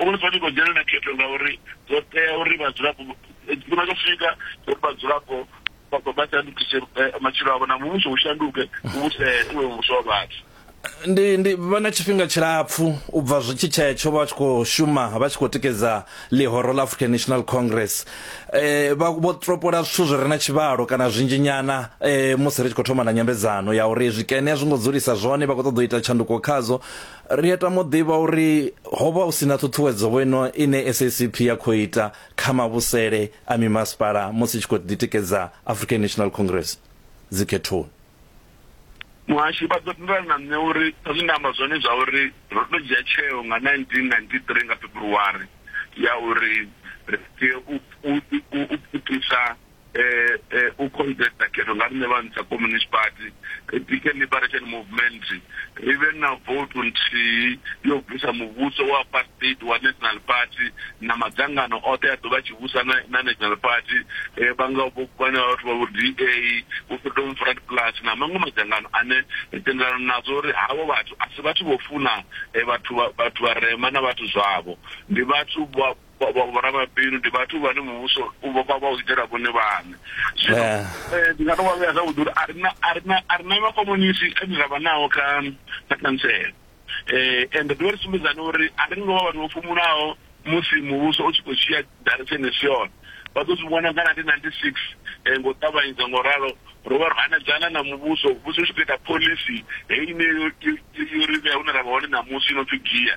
Uri ni fanela u dzhenela khetho ngauri zwo tea uri vhadzulapo tshifhinga tsho swika uri vhadzulapo vha shandukise matshilo avho na muvhuso u shanduke u vhuse u vhe muvhuso wa vhathu. Ndi ndi vha na tshifhinga tshilapfu u bva zwi tshi tshetsho vha tshi khou shuma vha tshi khou tikedza ḽihoro ḽa African National Congress eh vha vho topola zwithu zwi re na tshivhalo kana zwinzhi nyana eh musi ri tshi khou thoma na nyambedzano ya uri zwikene a zwi ngo dzulisa zwone vha khou ṱoḓa u ita tshanduko khadzo Ri a tama u ḓivha uri ho vha hu si na ṱhuṱhuwedzo vho ino ine SACP ya khou ita kha mavhusele a mimasipala musi i tshi khou ḓitikedza African National Congress dzikhethoni. Muhasho, vha ḓo tendelana na nṋe uri sa zwe nda amba zwone zwa uri ro tou dzhia tsheo nga 1993 nga February ya uri ri tea u pfukisa eh, eh, u convesta khetho nga riṋe vha ntsha communist party ri bike liberation movement ri vhe na vote nthihi yo bvisa muvhuso wa apartheid wa national party na madzangano oṱhe a ḓovha tshi vhusa na, na national party eh, vhanga vhana vhathu vha vho da vho freedom front plus na maṅwe madzangano ane ri tendelana nazwo uri havho vhathu a si vhathu vho funa eh, vhathu vhathu vharema na vhathu zwavho ndi vhathu Vha- vha- Vhoramabindu ndi vhathu vhane muvhuso u vha vha u itela vhone vhaṋe zwino Yeah. eh, ndi nga to vha vhea zwavhuḓi uri a ri na- a ri na- a ri na makomunisi ane ra vha nao kha kha khantsela eh ende ḓivha ri sumbedzana uri a ri ngo vha vhathu vho fhumulaho musi muvhuso u tshi khou dzhia direction i si yone vha ḓo zwi vhona nga 1996 eh, ngo ṱavhanyedza ngo ralo ro vha ro hanedzana na muvhuso muvhuso u tshi khou ita pholisi heyi ine yo- yo- yo- yo ri vhea hune ra vha hone ṋamusi i no pfi gia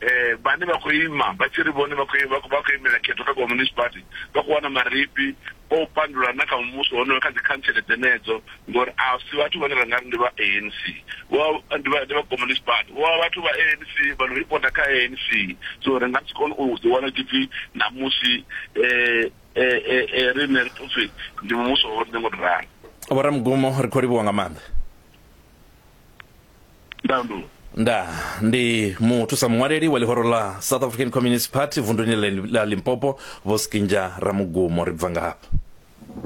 eh, vhane vha khou ima vha tshi ri vhone vha khou imela khetho kha communist party vha khou wana marifhi o u pandula na kha muvhuso honoyo kha dzikhantsele dzenedzo ngori a si vhathu vhane ra nga ri ndi vha anc ndi vha communist party vho vha vhathu vha anc vha no ripota kha anc so ri nga si kone u ḓi wana tshipfi namusi um eh, eh, eh, rine ri pfupfi ndi muvhuso ho ri nengo ri ralo vho ramugumo ri khou livhuwa nga maanḓa ndandulo nda ndi muthusa muṅwaleli wa ḽihoro ḽa south african communist party vunduni ḽa limpopo vho skinja ramugumo ri bva ngafha